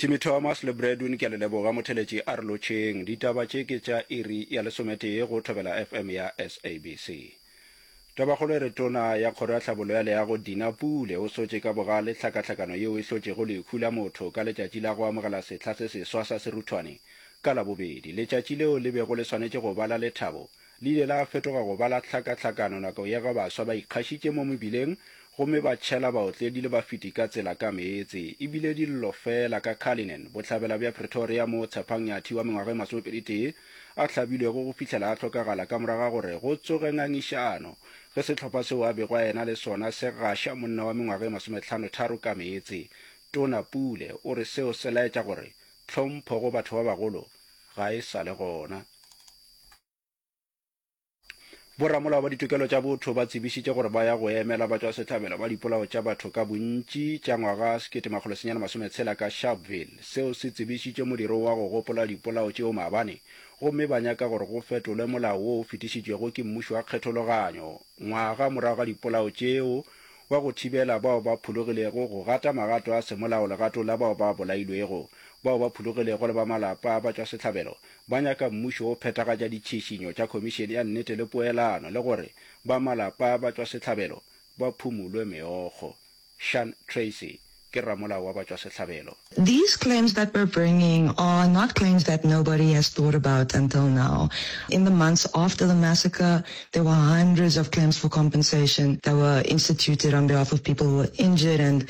Timmy Thomas le Bradwin ke a le leboga motheletši a re lotšheng ditaba tše ke tša iri ya lesometee go Thobela FM ya SABC. Tabakgolo e re tona ya kgoro ya tlhabollo ya leago Dina Pule o sotše ka bogale tlhakatlhakano yeo e hlotšego lehu la motho ka letšatši la go amogela sehla se seswa sa seruthwane ka Labobedi. Letšatši leo le bego le swanetše go ba la lethabo Le ile la fetoga go ba la tlhakatlhakano nako ye ge baswa ba ikgašitše mo mebileng gomme ba tšhela baotledi le bafeti ka tsela ka meetse. E bile dillo feela ka Cullinan, bohlabela bja Pretoria moo Tshepang Nyathi wa mengwaga e masomepedi-tee a hlabilwego go fihlela a hlokagala ka morago ga gore go tsoge ngangišano ge sehlopha seo a bego a ena le sona se gaša monna wa mengwaga e masometlhano-tharo ka meetse. Tona Pule o re seo se laetša gore tlhompho go batho ba bagolo ga e sa le gona. Boramolao ba ditokelo tša botho ba tsebišitše gore ba ya go emela batšwasehlabelo ba dipolao tša batho ka bontši tša ngwaga 1960 ka Sharpeville. Seo se tsebišitše modiro wa go gopola dipolao tšeo maabane gomme ba nyaka gore go fetolwe molao wo o fetišitšwego ke mmušo wa kgethologanyo ngwaga morago ga dipolao tšeo wa go thibela bao ba phologilego go gata magato a semolao legatong la bao ba bolailwego, bao ba phologilego le ba malapa a batšwasehlabelo ba nyaka mmušo wo phethagatša ditšhišinyo tša Khomišene ya Nnete le Poelano le gore ba malapa a batšwasehlabelo ba phumulwe meokgo. Shan Tracy ke ramolao wa batšwasehlabelo. These claims that we're bringing are not claims that nobody has thought about until now. In the months after the massacre, there were hundreds of claims for compensation that were instituted on behalf of people who were injured and.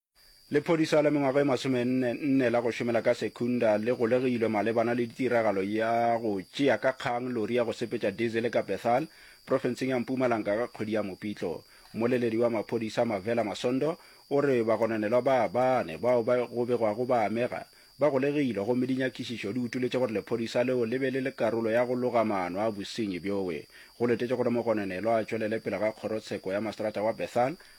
Lephodisa la mengwaga e masomenne nne la go šomela ka Secunda le golegilwe malebana le ditiragalo ya go tšea ka kgang lori ya go sepetša dizele ka Bethal, profenseng ya Mpumalanga ka kgwedi ya Mopitlo. Mmoleledi wa maphodisa Mavela Masondo o re bagononelwa ba bane bao ba go begwago ba amega, ba golegilwe gomme dinyakišišo di utoletše gore lephodisa leo le be le le karolo ya go loga maano a bosenyi bjoe. Go letetšwe gore mogononelwa a tšwelele pele ga kgorotsheko ya maseterata wa Bethal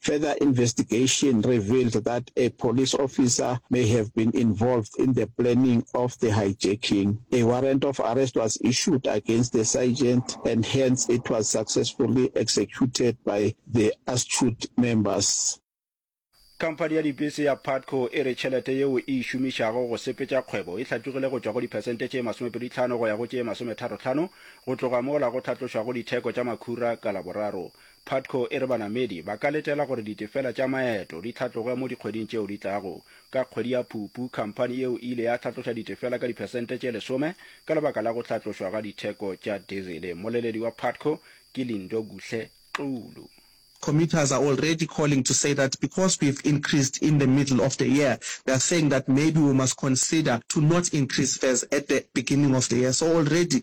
Further investigation revealed that a police officer may have been involved in the planning of the hijacking. A warrant of arrest was issued against the sergeant and hence it was successfully executed by the Astute members. Khamphani ya dibese ya Putco e re tšhelete yeo e e šomišago go sepetša kgwebo e hlatlogile go tšwa go diphesente tše masomepedi tlhano go ya go tše masometharo tlhano go tloga mola go hlatlošwago ditheko tša makhura ka Laboraro. Putco e re banamedi ba ka letela gore ditefela tša maeto di hlatloge mo dikgweding tšeo di tlago. Ka kgwedi ya Phupu, khamphani yeo e ile ya hlatloša ditefela ka diphesente tše lesome ka lebaka la go hlatlošwa ga ditheko tša dizele. Mmoleledi wa Putco ke Lindo Kuhle Xulu. Commuters are already calling to say that because we've increased in the middle of the year, they are saying that maybe we must consider to not increase fares at the beginning of the year. So already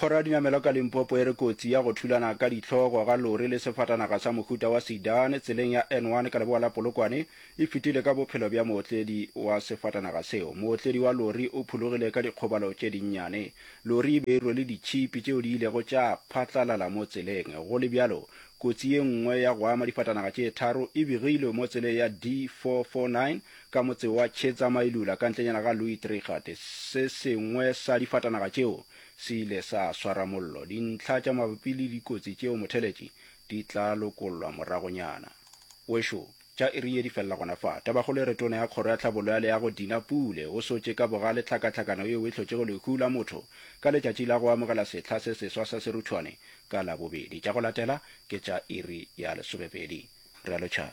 Kgoro ya Dinamelwa ka Limpopo e re kotsi ya go thulana ka dihlogo ga lori le sefatanaga sa mohuta wa sedan tseleng ya N1 ka leboa la Polokwane e fetile ka bophelo bja mootledi wa sefatanaga seo. Mootledi wa lori o phulogile ka dikgobalo tše dinnyane. Lori e be e rwele ditšhipi tšeo di ilego tša phatlalala mo tseleng. Go le bjalo, kotsi ye nngwe ya go ama difatanaga tše tharo e begilwe mo tseleng ya D449 ka motse wa Chetsamailoula ka ntlenyana ga Louisdrighat, se sengwe sa difatanaga tšeo se ile sa swara mollo. Dintlha tša mabapi le dikotsi tšeo motheletši di tla lokollwa moragonyana. Wešo, tša iri ye di felela gona fa. Tabakgolo e re Tona ya Kgoro ya Tlhabollo ya Leago Dina Pule o sotše ka bogale tlhakatlhakano yeo e hlotšego lehu la motho ka letšatši la go amogela sehla se seswa sa seruthwane ka Labobedi. Tša go latela ke tša iri ya lesomepedi. Realo Char.